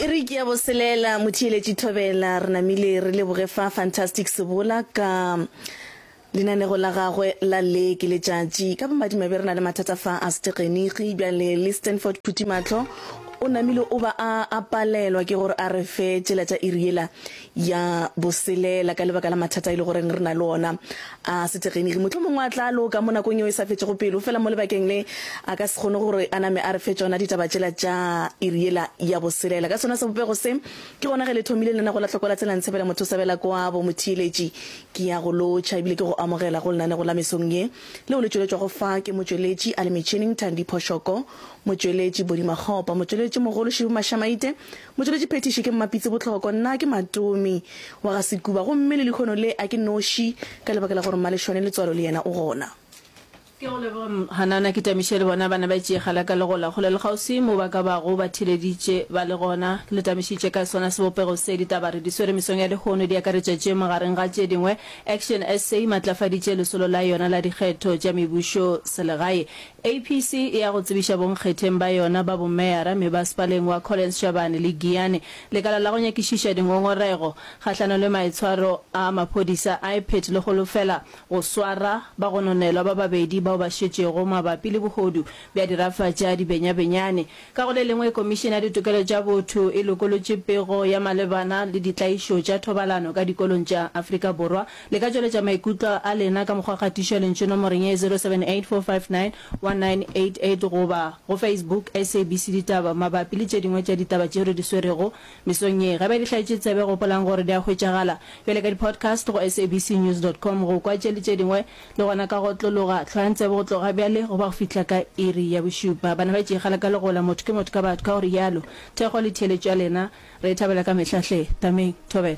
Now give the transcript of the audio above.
e re ke ya boselela motheeletši thobela re namile re leboge fa fantastic sebola ka lenanego la gagwe la le ke letšatši ka bomadimabe re na le mathata fa a setegeniki bjale le stanford phuthimatlho o namile o ba a palelwa ke gore a re fe tšela tša iri yela ya boselela ka lebaka la mathata e le goreng re na le ona a setegeniki. Mohlomongwe a tla loka mo nakong yeo e sa fetšego pelo, fela mo lebakeng le a ka se kgone gore a name a re fe tšona ditaba tšela tša iri yela ya boselela. Ka sona sebopego se, ke gona ge le thomile lenaneo la Tlhokola Tsela Ntshebela Mothosabela Koabo Motheeletši. Ke ya go lotšha ebile ke go amogela go lenanego la mesong ye, leo le tšweletšwago fa ke motšweletši a le metšhining Thandi Phoshoko, motšweletši Body Makgopa, motšweletši mogolo Shibu Mashamaite, Motšweletši phethiši ke Mmapitsi Botloko, nna ke Matomi wa ga Sekuba gomme le lehono le a ke noši ka lebaka la gore Mmaleshwane Letswalo le yena o gona. Ke go leboge Mhanana ke Tamiše le bona ba ne ba itšeegela ka legola kgole le kgauswi mo ba ka bago ba theleditše ba le gona. Le tamišitše kae sona sebopego se? Ditaba re di swere mesong ya lehono di akaretša tše magareng ga tše dingwe, Action SA e matlafaditše lesolo la yona la dikgetho tša mebušo selegae APC e ya go tsebiša bonkgetheng ba yona ba bomeyara mebasepaleng wa Collins Shabane le Giyani lekala la go nyakišiša dingongorego kgahlano le maitshwaro a maphodisa a Iphet le holofela go swara bagononelwa ba babedi bao ba šetšego mabapi le bohodu bja dirafa tša dibenyabenyane Ka go le lengwe, Komišene ya Ditokelo tša Botho e lokolotše pego ya malebana le ditlaišo tša thobalano ka dikolong tša Afrika Borwa. Le ka tšweletša maikutlo a lena ka mokgwa wa kgatišo ya lentšu nomoreng ye 0784591988 goba go Facebook SABC Ditaba mabapi le tše dingwe tša ditaba tšeo re di swerego mesong ye. Ge ba di hlaetše tsebe, gopolang gore di a hwetšagala bjale ka di-podcast go sabcnews dot com. Go kwa tše le tše dingwe, Le gona ka go otlologa, hlwayang tsebe go tloga bjale go ba go fihla ka iri ya bošupa. Bana ba tšee kgale ka legola, motho ke motho ka batho, ka go rialo. Thekgo le theeletšo ya lena re e thabela ka mehla hle. Tameng. Thobela.